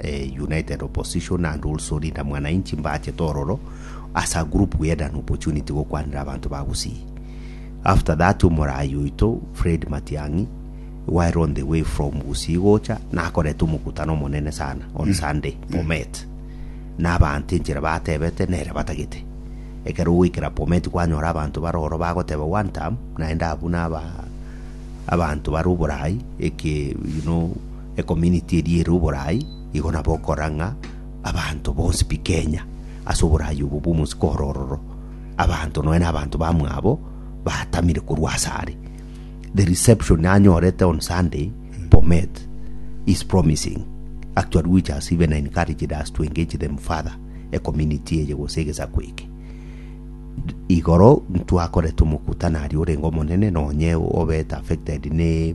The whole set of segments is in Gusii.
eh, United Opposition and also Linda Mwananchi mbachete ororo asa group we had an opportunity gokwanera abanto ba Gusii after that omorayi oito Fred Matiang'i while on the way from Gusii gocha nakoreta omokutano omonene sana on Sunday Bomet na abanto enchera batebete nere batagete ekero goikera Bomet kwanyora abanto baroro bagoteba one time naende abwo naba abanto bari oborayi eke you know Ecomunity eria ere oborai igo nabo okora ng'a abanto bonsi pi Kenya ase oborai obo bw'omosiko oro ororo abanto nonya na abanto bamwabo batamire korwa ase are. The reception anyorete on Sunday Bomet is promising actually which has even encouraged us to engage them further ecomunity eye gose egesaku eke. Igoro ntwakorete omokutano aria orenge omonene nonya obete affected ne.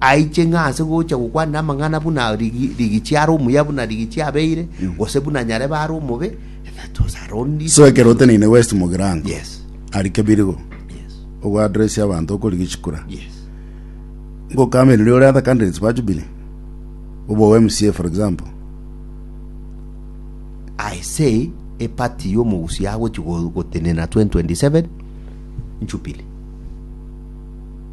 aiche ng'a ase gocha gokwana amang'ana buna rigichi are omuya buna rigichi abeire, gose buna nyarebe are omobe, that was her only So ekero oteneine West Mugirango, Yes. ari Kebirigo, Yes. ogoadressia abanto okori Gichikura, Yes. ngokameriri ore other candidates ba Jubilee, obe o MCA for example, I say a party y'omogusi agochi go- gotenena 2027 Jubilee.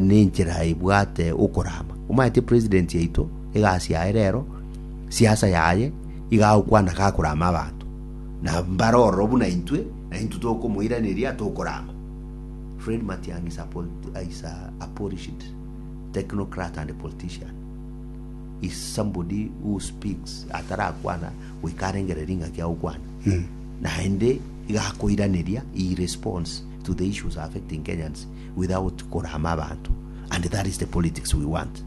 nenchera ebwate okorama. Omanyete president yaito egasi yaye rero siasa yaye iga agokwana gakorama abanto na mbare ororo buna intwe na intwe tokomoiraneria tokorama. Fred Matiang'i is a polit- is a, a polished technocrat and politician is somebody who speaks atarakwana goika arengere ring'aki agokwana naende iga akoiraneria he responds to the issues affecting Kenyans without korama abanto and that is the politics we want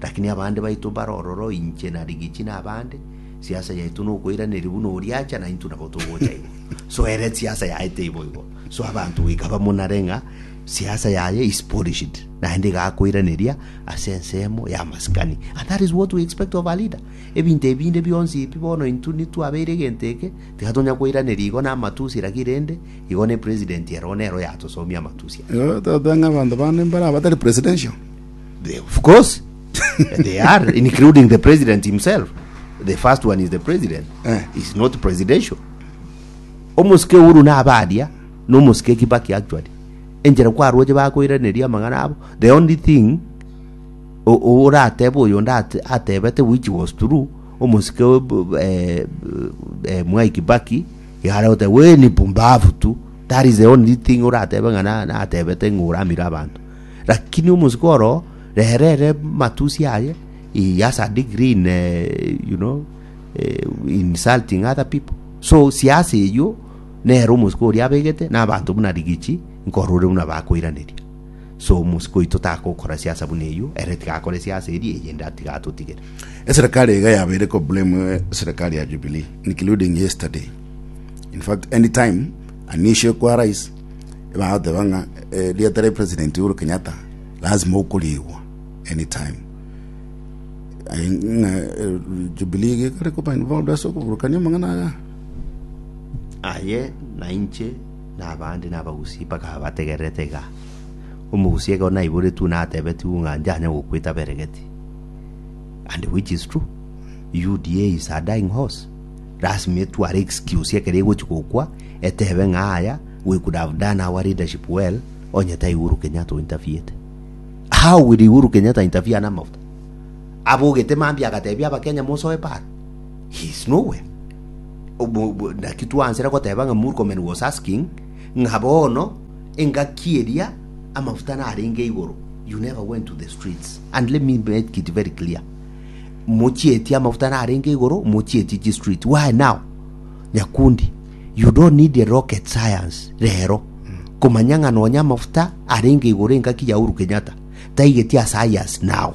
lakini abande baito bare ororo inche na Rigichi na abande siasa yaito nokoiraneria buna oria acha na intwe nabo togocha igo so ere siasa yaye teibo igo so abanto goika bamonare ng'a siasa yaye is polished naende igakoiraneria ase ensemo ya maskani and that is what we expect of a leader ebinto ebinde bionsi ebi bono intwe nitwabeire egento eke tiga tonya koiraneria igo na amatusi lakini rende Igo ne president ero nere oyatosomia amatusi aya. Igo totebe ng'a abanto bande mbare abatari presidential? They, of course, they are, including the president himself. The first one is the president. Eh. He's not presidential. Omosike Uhuru na abaria, na omosike Kibaki actually. Enchera kwaroche bakoiraneria amang'ana abo. The only thing o- o- oratebe oyo ndate atebete which was true, omosike eh, eh, Mwai Kibaki Igare gote weni pumbafu tu that is the only thing oratebe ng'a na- natebete ng'a oramire abanto lakini omosiko oro rere ere matusi aye he has a degree in eh, you know eh, insulting other people so siasa eyio nere omosiko oria abegete na abanto buna rigichi nkorore buna bakoiraneria So omosike oito takokora siasa buna eyio, ere tigakore siasa eria, eyende atige atotigere. Eserekari iga yabeire ko blame eserekari ya Jubilee including yesterday. In fact any time an issue ekwa rais bagoteba ng'a eh, rieta ria president Uhuru Kenyatta lazima okoriigwa any time. Aye ng'a eh, Jubilee iga ekore koba involved ase okoburukania amang'ana aya. Aye na inche Na abande nabagusie bakaba bategererete iga. Omogusi ekero naiboretigwe natebetigwe ng'a njanye gokweta beregeti. And which is true. UDA is a dying horse. Lasima etware excuse ekero egochi gokwa etebe ng'a aya we could have done our leadership well onye tai Uhuru Kenyatta o interviewete. How will Uhuru Kenyatta interfere namafuta? Abogete mambia agatebia abakenya mosoe para. He is nowhere. Obo- bo- Naki twansera goteba ng'a Murkomen was asking ng'a bono engaki eria amafuta narenge igoro. You never went to the streets. And let me make it very clear. Mochietie amafuta narenge igoro, mochietie chi street. Why now? Nyakundi, you don't need a rocket science rero. Komanya ng'a nonya amafuta arenge igoro engaki ya Uhuru Kenyatta. Taigeti a science now.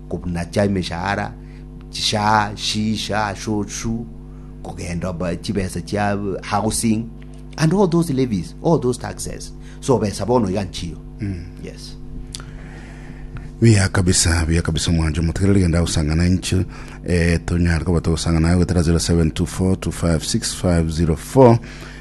Kobunacha emeshahara, chishaa, shi, sha, sho, shu, kogenda ba- chibesa chia housing and all those levies, all those taxes. So besa bono iga nchiyo. Yes. Buya kabisa, buya kabisa omwancho motigere rigenda agosangana inche eh, tonyare koba togosangana naye goetera 0724 256 504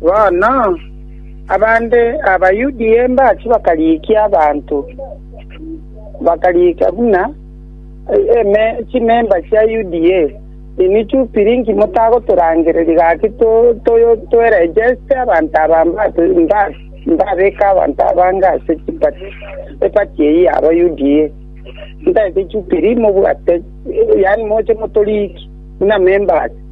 Bono abande Abayuda embache bakarigia abanto, bakarigia buna chimemba chia UDA, Inwe Jubili inki motagotorangereria gaki toerejeste abanto aba mbabeke abanto abange ase epati eyio yabo UDA? Ntareti Jubili mobwate, yaani moche motorigie buna memba ase.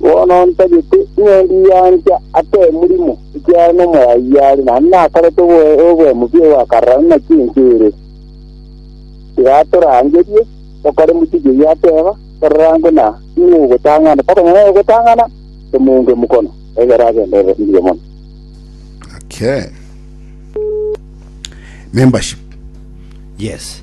Bono ntagete ing'endi yancha ase omorimo, ekiagera n'Omoyai are, naende nakorete oboemubi ogoakarerana naki ense ere. Tiga atorangerie, tokore mochie keria ateba, torora nguna nigo ogotang'ana, tokonyora ogotang'ana, tomounge mokono, egere agende obosinge mono. Okay. Membership. Yes.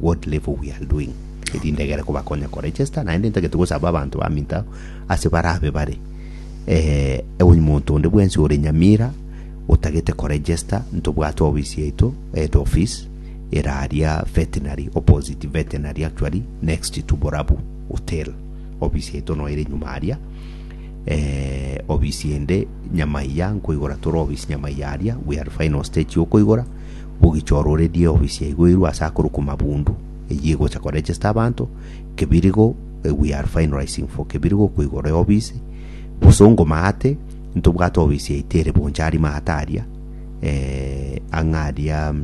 What level we are doing erinde egere kobakonya ko register naende ntagete gosaba abanto baminto abo ase barabe bare eh, omonto onde bwensi ore nyamira otagete ko register ntobwate ofisi yaito head office eraria veterinary opposite veterinary actually next to borabu hotel ofisi yaito no ere nyuma aria eh, ofisi ende nyamaiya nkoigora tore ofisi nyamaiya aria we are final stage yokoigora bogichororerie ofisi ya igoirwe ase akorwa koma bundu eyio egocha ko register abanto kebirigo we are finalizing for kebirigo ko igoro ya ofisi bosongo maate ntobwate ofisi yaito ere bonchari maate aria eh, ang'a aria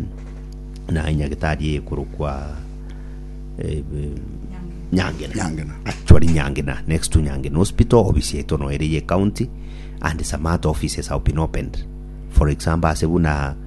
na nyagitari ekorokwa eh, nyangena Nyangena. actually nyangena next to nyangena hospital ofisi yaito no ere ye county and some other offices have been opened for example ase buna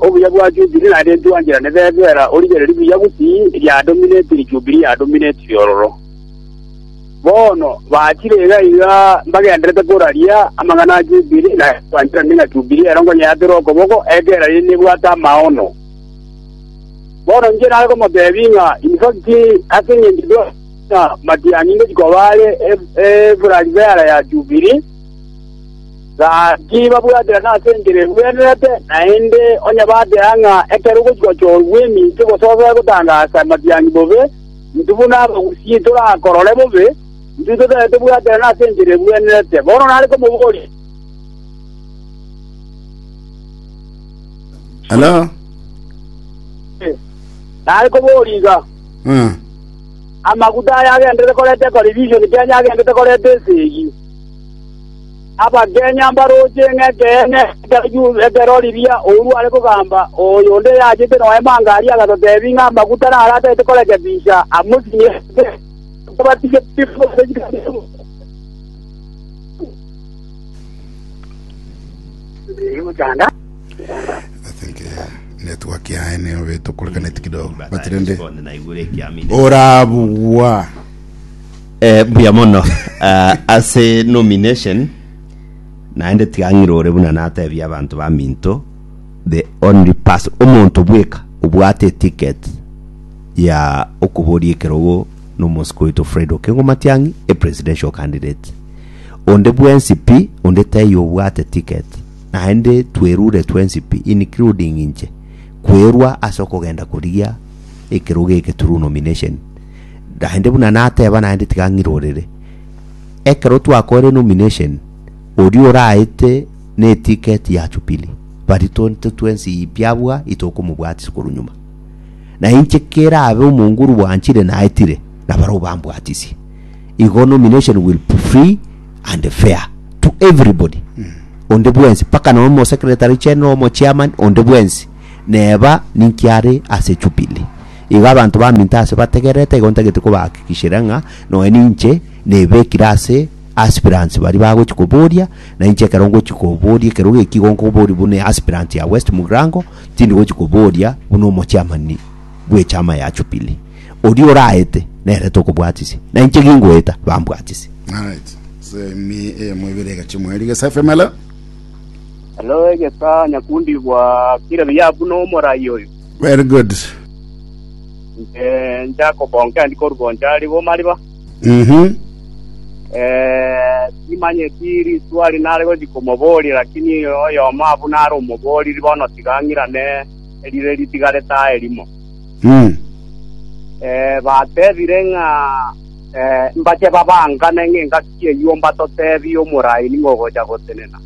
Obuya bwa Jubili naende ntwancherane bebera origererie buya bw'Ki riadominetiri Jubili yadominetiri ororo. Bono bachire iga iga mbagenderete koraria amang'ana a Jubili na ntwancherane ng'a Jubili ero nkonyeatera okoboko ekero riria nebwate amaono. Bono inche nare komotebia ng'a infacti ase engencho tware ng'a matiang'ingochi koba are Eburari bera ya Jubili, Gaki babwatire nase enchera egwenerete, naende onye bateba ng'a ekero ogochika ochoorwa gw'eminto egososa egotangasa amatiangi bobe, intwe buna abagusii torakorore bobe, intwe totari tobwatire nase enchera egwenerete. Bono nare komoboria, Hello? nare koboria iga, Ah. amaguta aya agenderete koreta ekoribishoni Kenya agenderete koreta esegi. Abakenya mbarooche ng'ekeene ekero riria ouru are kogamba oyonde oyachete noema anga aria agatoteebia ng'a amaguta naro atagete koreka bicha amosinye ase okobatiswa kw'Omonene. I think yeah. network yaye niyo betokorekaneti kidogo but rende orabugwa Eh, mbuya mono Ah, ase nomination naende tigang'irore buna natebia abanto ba minto the only person omonto bweka obwate eticket ya okoboria ekerogo nomosiko oito fred okengo matiang'i e presidential candidate onde bwensi pi onde tei obwate ticket naende twerure twensi pi including inche kwerwa ase okogenda korigia ekerogo eke through nomination Naende buna nateba naende tiga ng'irorere. Ekero twakoire nomination, oria oraete neticket ya Jubilee, baria tonto twensi pi abua itokomobwatis korwa nyuma. Na inche kerabe omongu oru bwanchire naetire, nabarobwo bambwatisie. Igo nomination will be free and fair to everybody. Onde bwensi, mpaka nomo secretary general, omo chairman, onde bwensi. Neba ninki are ase Jubili? Igo abanto baminto aase bategererete, igo ntagete kobaakikishera ng'a noe ninche nebekire ase aspirants baria bagochi koboria, na inche ekero ngochi koboria ekerogo eki igo nkoboria buna aspirant ya West Mugirango, tindi gochi koboria buna omochiamani bw'echama ya Jubili. Oria oraete, nere tokobwatisia, na inche gingoeta, bambwatisia. Alright. Semi eyemo ibere egachia omweri gesa efemelo. Hello, egesa nyakundi bwa kire biya buna omorai oyo. Very good. Nche nchakobonka endi korubo nchari bo mariba. Mhm. Eh, timanyeti riswari nare gochi komoboria, lakini oyomo abu nare omoboriri bono tiga ang'irane erire ritigarete aa erimo. Mm. Eh, batebire ng'a eh, mbache babangane ng'engaki eyio mbatotebie omorai ning'ogocha gotenena.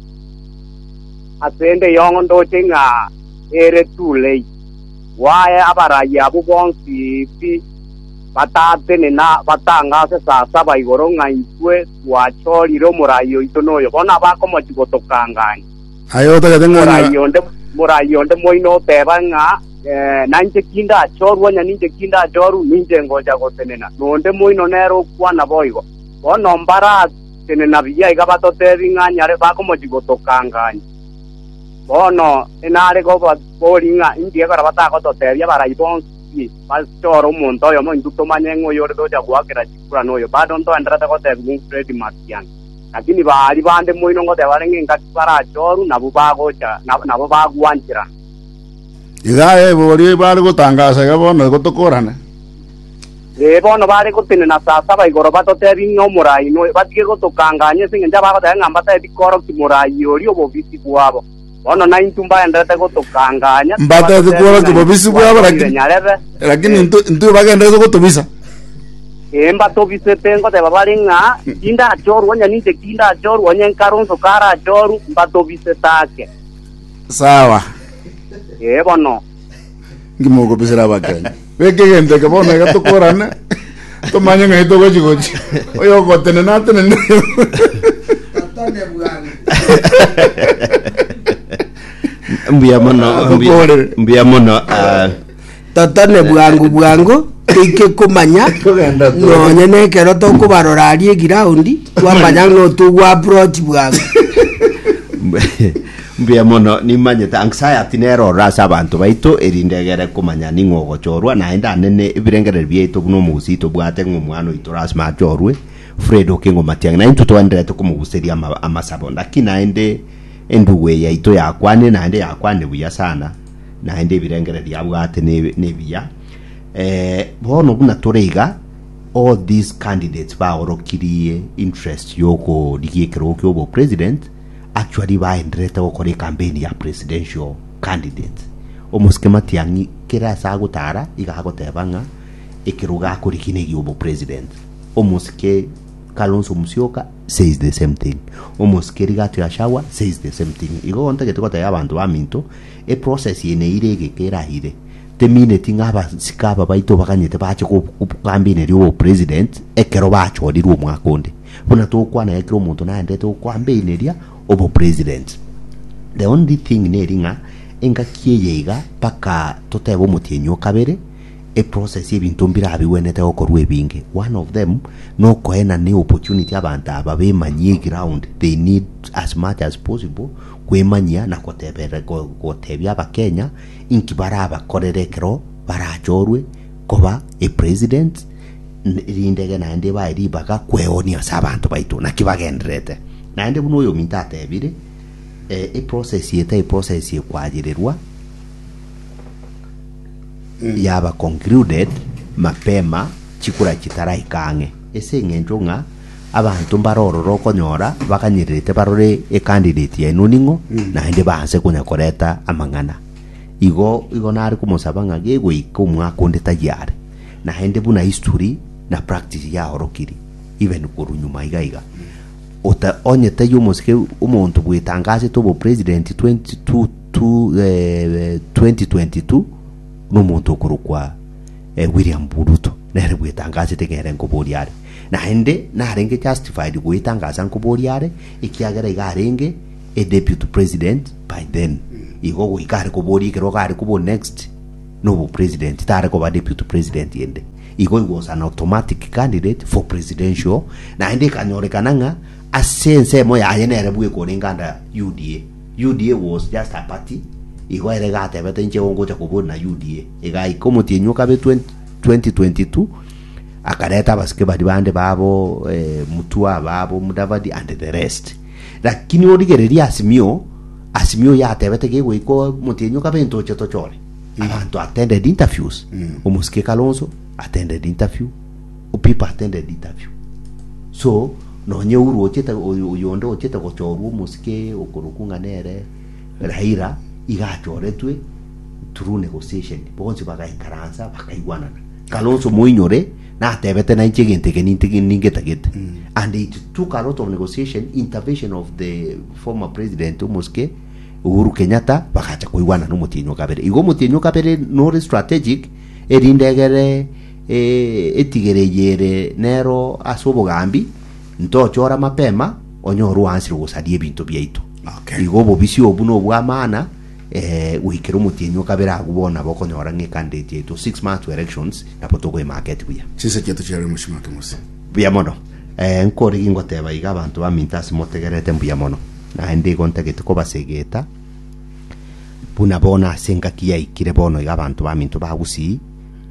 asende eyong'o ndoche ng'a ere Tulei, bwaye abarai abwo bonsi pi, batatene na batangase saa saba igoro ng'a intwe twachorire omorai oito noyo. Bono abakomochia gotokangania. Aye otagete ng'a Omorai nyora- onde, omorai onde moino oteba ng'a, Eh, nainche tindachorwa, onye ninche tindachorwa, ninche ngocha gotenena. Na onde moino nere okwana boigo. Bono mbara Tenena buya iga batotebi ng'a nyare bakomochi gotokanganya. Bono inare gobori ng'a inki ekora batagototebia abarai bonsi ki bachore omonto oyomo intwe tomanye ng'a oyore tocha goakera chikura noyo. Bado ntoenderete gotebigwa un Fred Matiang'i. Lakini baari bande moino ngoteba bare ng'a engaki barachorwe nabwo bagocha nabo bagwancherana. Iga aya ebori bare gotangasa iga bono igo tokorane. Ee, bono bare gotenena saa saba igoro batotebie ng'a omorai noyo, batige gotokanganya ase engencho abagoteba ng'a mbatebe bikoroki morai oria obobisi bwabo. Bono naintwe mbagendererete gotokanganya, Mbatebe tibatotebie bikoroki ng'a obobisi intwe bwabo, twatorire lakini- nyarebe. lakini Ee. intwe intwe bagendererete gotobisa. Ee, mbatobisete, ngoteba bare ng'a tindachorwa, onye ninche tindachorwa, onye Nkaronso karachorwe, mbatobisete ake. Sawa. Ee, bono. ngimokobisera abakenyi beke egento eke bono iga tokorane tomanye ng'ai togochi gochi oyo ogotenena atenene Atone bwango. mbuya mono Ah, mbuya- tokorere. mbuya mono ah, totone bwango bwango toike komanya Togenda tu. nonye nekero tokobarora aria egiraundi twamanya notogwa approach bwango mbu- Mbuya mono, nimanyete anxiety nere ororo ase abanto baito, erinde egere komanya ning'o ogochorwa, naende anene ebirengererio biaito buna omogusii tobwate ng'a omwana oito lasima achorwe, Fred Okengo Matiang'i, naintwe twaenderete komoguseria ama, amasabo, lakini naende endugu eye yaito yakwanire, naende yakwanire buya sana, naende ebirengererio abwate ne, nebiya. Eh, bono buna tore iga, all these candidates baorokirie interest yokorigia ekerogo kia obopresident, Actually baenderete gokora ekampeni ya presidential candidate. Omosike Matiang'i kera ase agotara iga agoteba ng'a ekerogo akorigia negia obo president. Omosike Kalonzo Musyoka says the same thing. Omosike Rigathi Gachagua says the same thing. Igo ntagete gotebia abanto baminto e process eye neire egeka erahire temineti ng'a abasike aba baito baganyete bache go campaign eria obo president ekero bachorirwe omwaka onde. Buna togokwana iga kera omonto naendete gokwambeineria obo president. The only thing neri ng'a engaki eye iga mpaka totebe omotienyi o kabere e process ya ebinto mbirabigwenete gokorwa ebinge. One of them nokoena ne opportunity abanto aba bemanyie eground they need as much as possible kwemanyia na gotebera gotebia abakenya inki barabakorere ekero barachorwe Koba epresident rindege naende bae ribaga kweoonia ase abanto baito naki bagendererete. Naende buna oyominto atebire, eh, eprocess eye tari process ye koachererwa yaba concluded mapema chikura chitaraika ang'e ase eng'encho ng'a abanto mbare ororo okonyora baganyererete barore ecandidate yaino ning'o naende baanse konya koreta amang'ana. Igo igo nare komosaba ng'a gegoika omwaka onde tayia are, naende buna history na practice yaorokirie, even korwa nyuma iga iga. Ota, onye tayia omosike omonto bwetangasete obo president 22 tu- eh, 2022 na omonto okorokwa eh, William Ruto nere bwetangasete ng'a ere nkoboria are, naende narenge justified goetangasa nkoboria are ekiagera iga arenge a deputy president by then igo goika are koboria ekero gare kobo next nobo president tare koba deputy president ende igo he was an automatic candidate for presidential naende ekanyorekana ng'a ase ensemo yaye nere bwe ekorenge under UDA UDA was just a party igo ere gatebete inche igo ngocha kobuna UDA egaika omotienyi okabe 20 2022 akareta abasike bari bande babo eh, mutua babo mudavadi and the rest Lakini origererie Asimio, Asimio yatebete gegoika omotienyi okabe ntoche tochore abanto attended interviews omosike Kalonzo attended interview Opipa attended interview so nonye uru ochete oyo- oyonde ochete gochorwa omosike okorokwa ng'a nere Raila iga achoretwe through negotiation bonsi bagaikaransa bakaigwanana Kalonzo moinyore natebete nainche egento eke nintige ningetagete and it took a lot of negotiation intervention of the former president omosike Uhuru Kenyatta bagacha koigwana na omotienyi o kabere igo omotienyi o kabere nore strategic erinde egere eh, etigere eye ere nero ase obogambi ntochora mapema onyore oansire ogosaria ebinto biaito Okay. igo obobisi obu nobwamana Ee, goikera omotienyi o kabere agwo bono nabo okonyora ng'a ekanda eye tiyaitwa six months to elections, nabo tokoemarket buya. Chinsa chiaito chiarenge mochie make mose. Buya mono. Ee, nkore gingoteba iga abanto baminto ase motegererete mbuya mono. Naende igo ntagete kobasegeta, buna bono ase engaki yaikire bono iga abanto baminto bagusii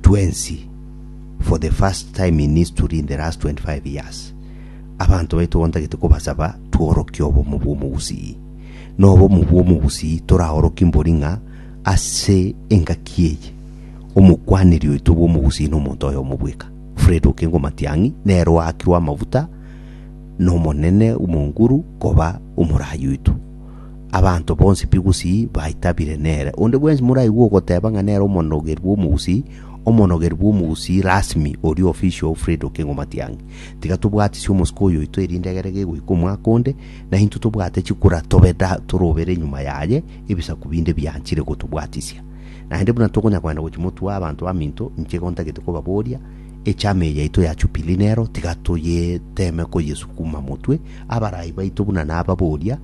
twensi for the first time in history in the last 25 years. Abanto baito igo ntagete kobasaba tworokie obomo bw'omogusii. Nobomo bw'omogusii toraorokie mbori ng'a ase engaki eye omokwaneri oito bw'omogusii nomonto oyomo bweka, Fred Okengo Matiang'i, nere oakirwe amafuta n'Omonene Mwonguru koba omorai oito. Abanto bonsi b'egusii baitabire nere. Onde bwensi moraigwe ogoteba ng'a nere omonogeri bw'omogusii, omonogeri bw'omogusii rasmi oria official Fred Okengo Matiang'i. Tiga tobwatisie omosike oyoito erinde egere gegoika omwaka onde, na intwe tobwate chikura tobe da torobere nyuma yaye ebisaku binde bianchire gotobwatisia. Naende buna tokonya kogenda gochia motuo abanto baminto, inche igo ntagete kobaboria, Echama eye yaito ya Chupili nero, tiga toyeteme koyesukuma motwe, abarai baito buna nababoria,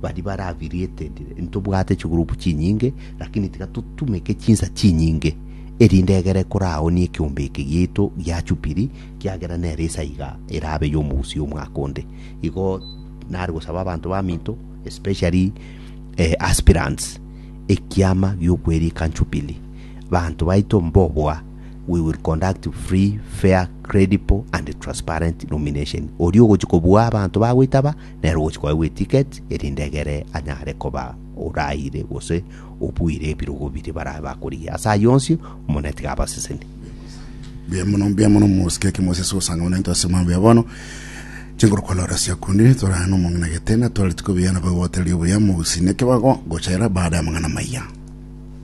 baria bare affiliated, ntobwate chigroup chinyinge, lakini tiga totumeke chinsa chinyinge, erinde egere koraonie ekeombe eke giaito gia Chupili, kiagera nero esaiga erabe y'omogusii omwaka onde. igo nare gosaba abanto baminto especially eh, aspirants ekiama gi'okwerika Jubilee. Abanto baito mbobua we will conduct free, fair, credible and transparent nomination. Oria ogochi kobua abanto bagoitaba nere ogochi koegwa eticket erinde egere anyare koba oraire gose obuire ebirogo biria barabe bakorigia. Ase ayio onsi, Omonene tiga abasesenie. Mbuya mono, mbuya mono mosike eke mose ase ogosanga buna into ase mambia ya bono. Chinguru kolora sia kundi torana na omong'ina getena tore tiko biana bagoteria obuya mogusine kebago gochera baada ya amang'ana maya.